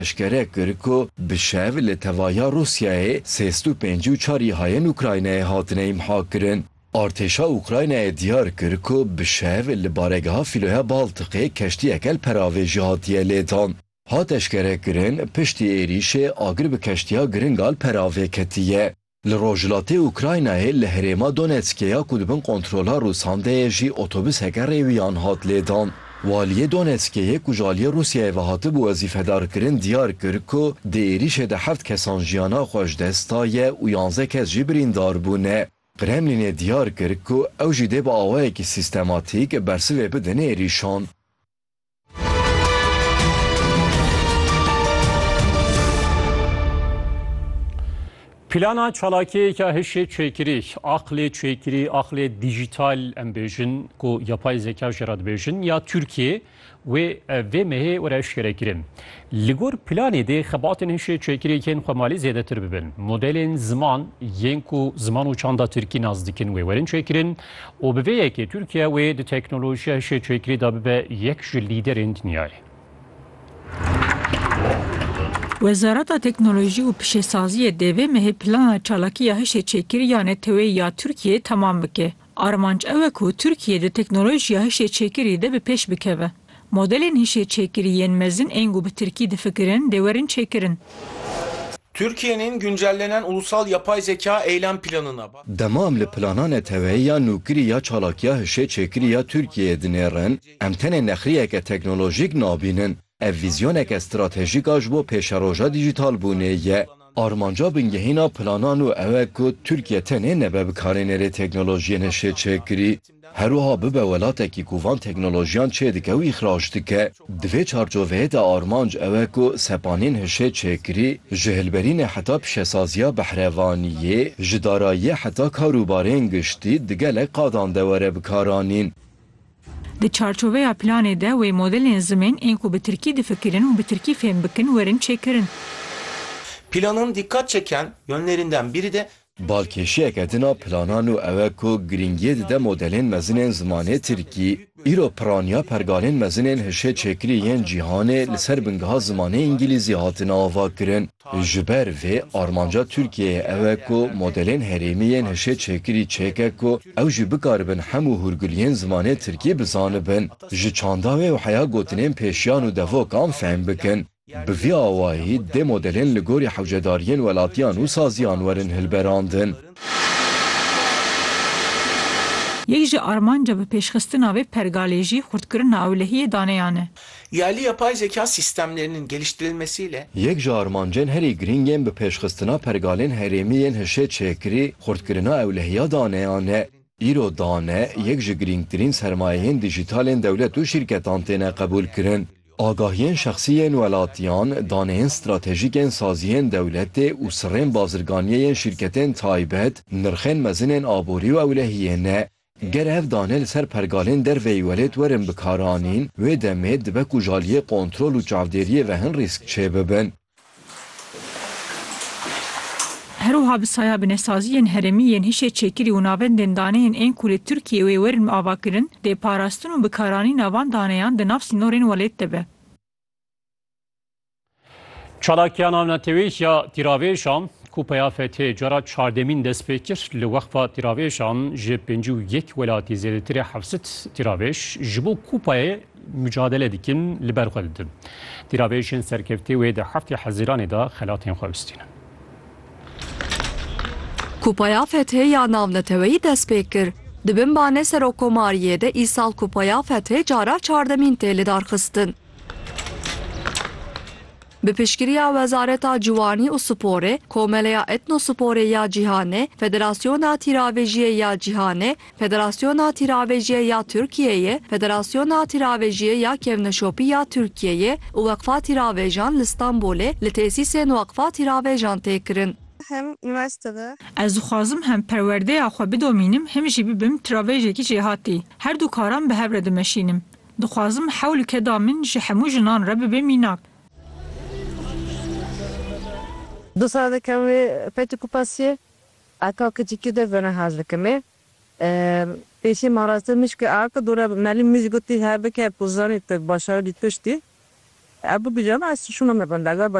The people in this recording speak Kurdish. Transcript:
Eşkere kir ku bi şev li tevaya Rûsyayê sê sed û pêncî û çar îhayên Ukraynayê hatine îmhakirin. Artêşa Ukraynayê diyar kir ku bi şev li baregeha Fîloya Baltiqê keştiyeke li peravê jî hatiye lêdan. Hat eşkerekirin, piştî êrîşê agir bi keştiya giringa li peravê ketiye. Li rojhilatê Ukraynayê li herêma Donetskê ya ku di bin kontrola Rûsan de ye jî otobuseke rêwiyan hat lêdan. Waliyê Donetskê yê ku ji aliyê Rûsyayê ve hatibû wezîfedarkirin diyar kir ku di êrîşê de heft kesan jiyana xwe ji dest daye û yanzdeh kes jî birîndar bûne. Kremlînê diyar kir ku ew jî dê bi awayekî sîstematîk bersivê bidin êrîşan. Plana çalakiyêka hişê çêkirî, aqlê çêkirî, aqlê dîjîtal em bêjin ku yapay zeka jê re dibêjin ya Tirkiyê wê vê mehê were eşkere kirin. Li gor planê dê xebatên hişê çêkirî yên xwemalî zêdetir bibin. Modelên ziman yên ku ziman û çanda Tirkî nas dikin wê werin çêkirin û bi vê yekê Tirkiye wê di teknolojiya şêçekirî de bibe yek ji lîderên dinyayê. Wezareta Teknolojî û Pişesaziyê dê vê mehê plana çalakî ya hişêçêkirî ya neteweyî ya Tirkiyeyê temam bike. Armanc ew e ku Tirkiye di teknolojiya hişêçêkirî de bi pêş bikeve. Modelên hişê çêkirî yên mezin ên ku bi tirkî difikirin dê werin çêkirin. Türkiye'nin güncellenen ulusal yapay zeka eylem planına. Dema em li plana neteweyî ya nûkirî ya çalakiya hişê çêkirî ya Tirkiyeyê dinêrin, em tenê nexrîyeke teknolojîk nabînin, ev vîzyoneke stratejîk a ji bo pêşeroja dîjîtalbûnê ye. Armanca bingehîna planan û ew e ku Tirkiye tenê nebe bikarînerê teknolojiyên hişê çêkirî, Herwiha bibe welatekî ku van teknolojiyan çêdike û îxrac dike. Di vê çarçoveyê de armanc ew e ku sepanên hişê çêkirî, ji hilberînê heta pişesaziya behrevaniyê, ji darayiyê heta karûbarên giştî di gelek qadan de were bikaranîn. Di çarçoveya planê de wê modelên zimên ên ku bi tirkî difikirin û bi tirkî fêm bikin werin çêkirin. Planan dîqat çeken yonlerinden bîrî de Balkêşiyeke din a plana nû ew e ku girîngiyê dide modelên mezin ên zimanê Tirkî. Îro piraniya pergalên mezin ên hişê çêkirî yên cîhanê li ser bingeha zimanê Îngîlîzî hatine avakirin. Ji ber vê armanca Tirkiyeyê ew e ku modelên herêmî yên hişê çêkirî çêke ku ew jî bikaribin hemû hûrguliyên zimanê Tirkî bizanibin, ji çanda wê û heya gotinên pêşiyan û devokan fehm bikin. Bi vî awayî dê modelên li gorî hewcedariyên welatiyan û saziyan werin hilberandin. Yek ji armanca bi pêşxistina vê pergalê jî xurtkirina ewlehiyê daneyan e. Yaliya pay zeka sîstemlerinin geliştirilmesiyle. Yek ji armancên herî girîng ên bi pêşxistina pergalên herêmî yên hişê çêkirî xurtkirina ewlehiya daneyan e. Îro dane yek ji girîngtirîn sermayeyên dijîtalên dewlet û şîrketan têne qebûlkirin. Agahiyên şexsî yên welatiyan, daneyên stratejîk ên saziyên dewletê û sirrên bazirganiyê yên şîrketên taybet, nirxên mezin ên aborî û ewlehiyê ne. Ger ev dane li ser pergalên derve yî welêt werin bikaranîn, wê demê dibe ku ji aliyê kontrol û çavdêriyê ve hin rîsk çêbibin. Her wiha bi saya binesaziyên herêmî yên hişê çêkirî û navendên daneyên ên ku li Tirkiyeyê wê werin avakirin dê parastin û bikaranîna van daneyan di nav sînorên welêt de be. Çalakiya navnetewî ya tîravêjan ku peya fethê cara çardemîn dest pê kir, li weqfa tîravêjan ji pêncî û yek welatî zêdetirê hevsed tîravêj ji bo Kupayê Mucadele dikin li ber xwe didin. Tîravêjên serkeftê wê di heftê Hezîranê de xelatên xwe bistîne. Kupaya Fethê ya Navneteweyî dest pê kir. Di bin banê Serokkomariyê de îsal Kupaya Fethê cara çardemîn tê lidarxistin. Bi piştgiriya Wezareta Ciwanî û Sporê, Komeleya Etnosporê ya Cîhanê, Federasyona Tîravêjiyê ya Cîhanê, Federasyona Tîravejîye ya Tirkiyeyê, Federasyona Tîravejîye ya Kevneşopî ya Tirkiyeyê û Weqfa Tîravejan li Stenbolê li tesîsên Weqfa Tîravejan tê kirin. Hem unîversîte de. Ez dixwazim hem perwerdeya xwe bidomînim hem jî bibim tiravejekî jêhatî. Her du karan bi hev re dimeşînim. Dixwazim hewl û keda min ji hemû jinan re bibe mînak. Dosar dikim wê Fethî Kupas yê. Eka kicî kî de vene hez dikim ê. Pêşî ma ra se mişkê aka dore Melî mij gotî hebike ku zanî tu başaribî tiştî. Ew bibijana ez şûna me bende.